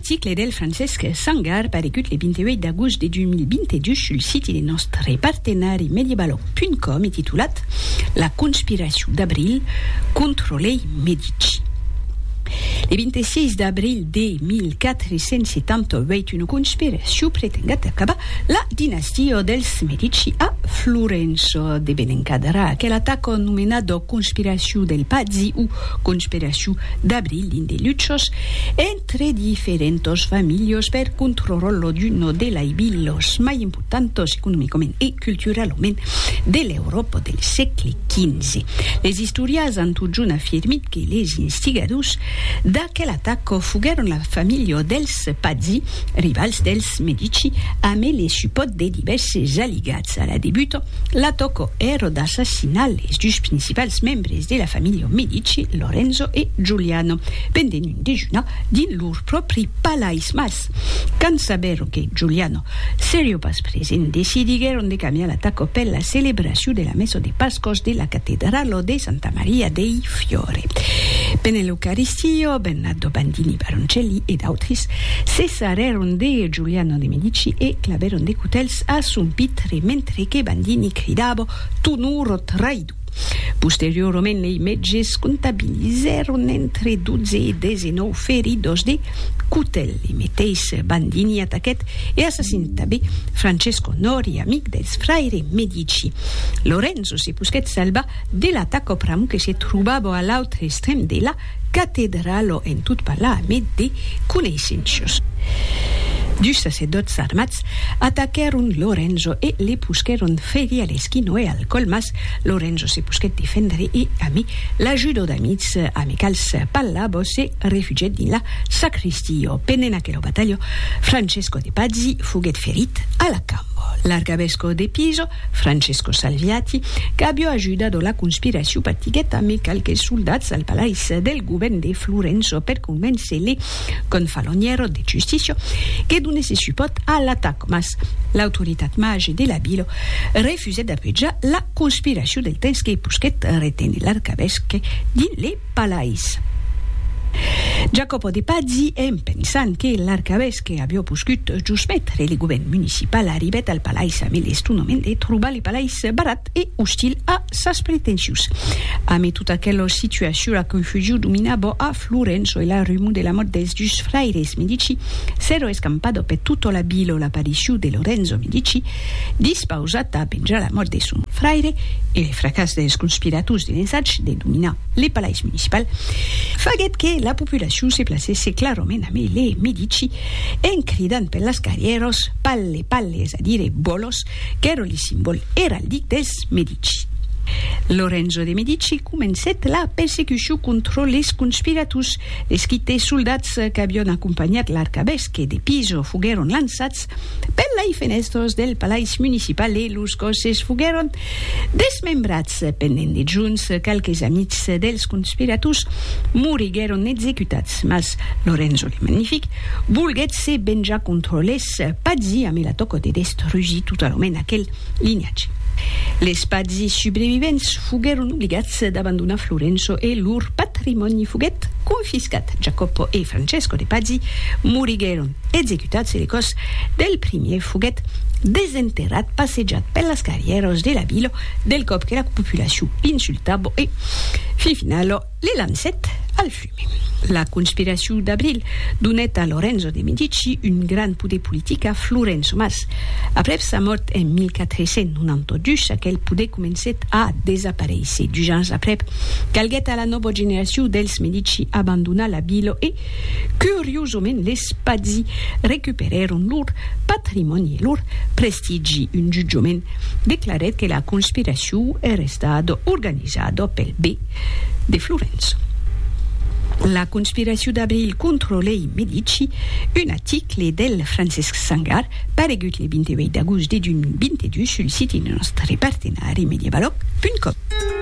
Ticle del Francesc Sangar paregut le 28 d'agost de 2022 sul siti de nòstre partenari Mediebaloh.com e titulat La conspiracion d'abril contra lei Medici. Le 26 d'abril de 1478 una conspiracion pretenguèt acabar la dinastia dels Medici a Florença. De ben encadrar aquela tacon nomenada conspiracion del Pazzi o conspiracion d'abril dins de luchos, Tre diferentos familhos per controrollo d'uno de lai bilhos mai importantos economicament e culturalament de l'Euròpa del sègle XV. Les istorias an totjorn afirmit que les instigadors d'aquel ataco foguèron la familha dels Pazzi, rivals dels Medici, amé le supòrt de divèrses aligats. A la debuta, l'ataco èra d'assassinar les dus principals membres de la familha Medici, Lorenzo e Giuliano. Pendent dejunar dins lor pròpri palais, mas, quand sabèron que Giuliano serio pas present, decidiguèron de camiar la taco per la celebracion de la messa de Pascos de la catedralo de Santa Maria dei Fiore. Pendent l'Eucaristio, Bernardo Bandini Baroncelli e d'autres se sarrèron de Giuliano de Medici e clavèron de cotèls a son pitre, mentre que Bandini cridava, Tu nuro traïdor! Posteriorament lei mètges comptabilizèron entre 12 e 19 feridos de cotèl. Lei meteis Bandini ataquèt e assassinèt tanben Francesco Nori, amic dels fraire Medici. Lorenzo se posquèt salvar de l'ataca pr'amor que se trobava a l'autre extrèm de la Catedralo en tot parlar a met de coneissenços. Dus sacerdòts armats ataquèron Lorenzo e le posquèron ferir a l'esquino e al còl mas Lorenzo se posquèt defendre e ami l'ajudo d'amics amicals Pallabo se refugièt dins la sacristio. Pendent aquela batalha Francesco de Pazzi foguèt ferit a la cambo. L'arcavesco de Piso Francesco Salviati, qu'avió ajudado la conspiracion patiguèt amé qualques soldats al palais del govèrn de Florenço per convéncer le Confaloniero de Justicia que donèsse supòrt a l'atac mas l'autoritat mage de la vila refusèt d'apejar la conspiracion del temps que posquèt reténer l'arcavèsque dins le palais. Jacopo de Pazzi, en pensant que l'arcavèsque que avió poscut jos metre le govèrn municipal arribèt al palais amé l'estonament de trobar le palais barat e ostil a sas pretensions. Amé tot aquel situacion la confusion dominabò a Florenço e la rumor de la mòrt dels dus fraires Medici s'èro escampadò per tota la vila o l'aparicion de Lorenzo Medici dispausat a venjar la mòrt de son fraire e le fracàs dels conspirators de l'ensatge de dominar le palais municipal, faguèt que la populacion se placèsse clarament a mai le midici, en cridant per las carrièras Palle, palle, es a dire bolos, qu'èra li simbòl eraldic dels Medici. Lorenzo de Medici comencèt la persecucion contra les conspirators, les quite soldats qu'avián acompanhat l'arcavesque de Pisa foguèron lançats Per lei fenèstros del palais municipal e los còsses foguèron desmembrats. Pendent dejuns, qualques amics dels conspirators moriguèron executats, mas Lorenzo le Magnific volguèt se venjar contra les Pazzi amb la tòca de destrusir totalament aquel linhatge. Les Pazzi subrevivents foguèron obligats d'abandonar Florenço e lor patrimòni foguèt confiscat. Jacopo e Francesco de Pazzi moriguèron. executat se le còs del primièr foguèt desenterrat passejat per las carrièras de la vila del còp que la populacion insultava e, fin finala, le lancèt al fume. La conspiracion d'abril donèt a Lorenzo de Medici un grand poder politic a Florença mas, aprèp sa mòrt en 1492, aquel poder comencèt a desaparéisser. Dus ans aprèp, calguèt a la nòva generacion dels Medici abandonar la vila e, Curiosament les Pazzi recuperèron lor patrimòni e lor prestigi, un jutjament declarèt que la conspiracion èra estada organizada pel bè de Florença. La conspiracion d'abril contra lei Medici, un aticle del Francesc Sangar paregut le 28 d'agost de 2022 sul siti de nòstre partenari Medievaloc.com.